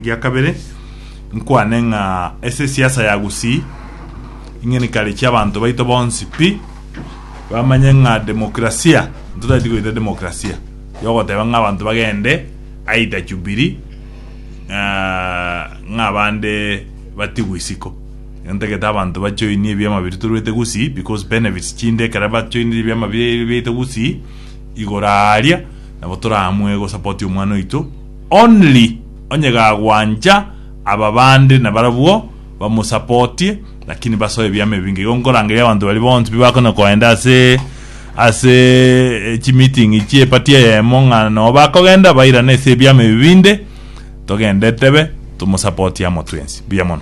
Egia kabere, nkwane ng'a ase esiasa ya Gusii, ing'enikare chi'abanto baito bonsi pi bamanye ng'a demokrasia, ntotagete goita demokrasia yogoteba ng'a abanto bagende aidha Jubilee ng'a abande batigwe isiko. Igo ntagete abanto ba join ebiama biria toruete Gusii because benefits chinde ekero ba joinire ebiama biaito Gusii, igoro aaria nabo toramue go support omwana oito. Only onye gagwancha aba bande na barabwo bamosapotie lakini basoe ebiama ebi ngaiga nkorangeria abanto baria bonsi pi bakona koenda ase ase chi meeting chie party eyemo ng'a noo bakogenda bairane ase ebiama ebi binde togende tebe tomosapotie amo twensi. Mbuya mono.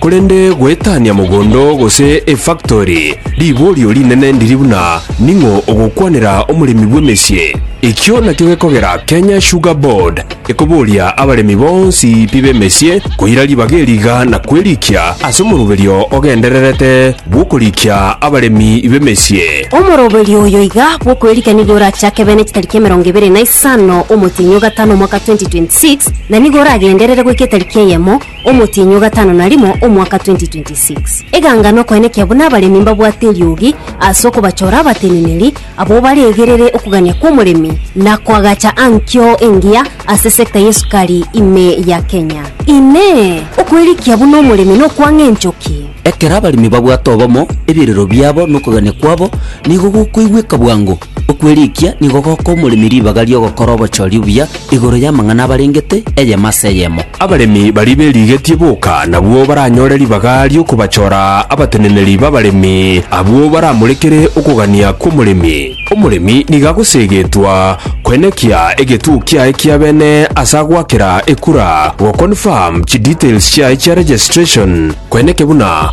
Korende goetania mogondo gose efaktori, riborio rinene ndiri buna ning'o ogokwanera omoremi bw'emesie. Ekio nakio gekogera Kenya Sugar Board ekoboria abaremi bonsi pi b'emesie koira ribaga eri iga na kwerikia ase omoroberio ogendererete bw'okorikia abaremi b'emesie. Omoroberio oyo iga bw'okwerikia nigo orachake bene chitariki emerongo ebere na isano omotienyi o gatano omwaka 2026, na nigo oragenderere goika etariki eyemo, Omotienyi o gatano na rimo omwaka 2026. Eganga nokoenekia buna abaremi mbabwate eriogi ase okobachora abateneneri abwo baregerere okogania kw'omoremi na koagacha ankio engiya ase sector y'esukari ime ya Kenya. Inee! Okwerikia buna omoremi nokwang'a enchoki? Ekero abaremi babwate obomo, ebirero biabo nokogania kwabo nigo gokoigweka bwango. Okwerikia nigo goka omoremi ribaga ri'ogokora obochori obuya igoro y'amang'ana abarengete, eyemo ase eyemo. Abaremi baria berigetie boka nabwo baranyore ribaga ri'okobachora abateneneri b'abaremi, abwo baramorekere okogania kw'omoremi. Omoremi nigo agoseegetwa koenekia egetuo kiaye kia bene ase agoakera ekura, go-confirm chidetails chiaye chia registration, koeneke buna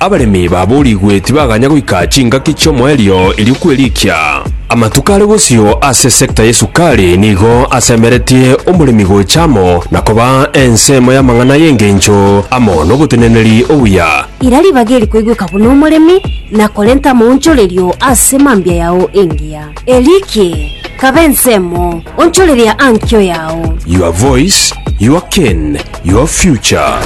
Abaremi baboorigwe tibaganya goika chingaki chi'omoerio erio kwerikia. Amatuko are bosio ase esekta y'esukari nigo asemeretie omoremi gocha amo na koba ensemo y'amang'ana y'engencho amo n'oboteneneri obuya. Ira ribaga eri koigweka buna omoremi na korenta amaonchorerio ase mambia yao engiya. Erikie, kaba ensemo, onchoreria ankio yao. Your voice, your cane, your future.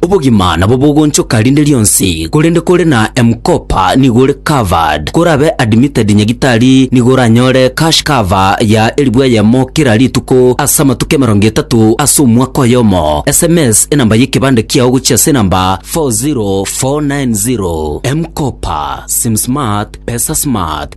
Obogima nabo bogonchoka rinde rionsi, korende kore na M-Kopa nigo ore covered. Korabe admitted nyagitari nigo oranyore cash cover ya elifu eyemo kera rituko ase amatuko emerongo etato ase omwaka oyomo. SMS enamba y'ekebande kiao gochia ase enamba 40490. M-Kopa, Sim Smart, Pesa Smart.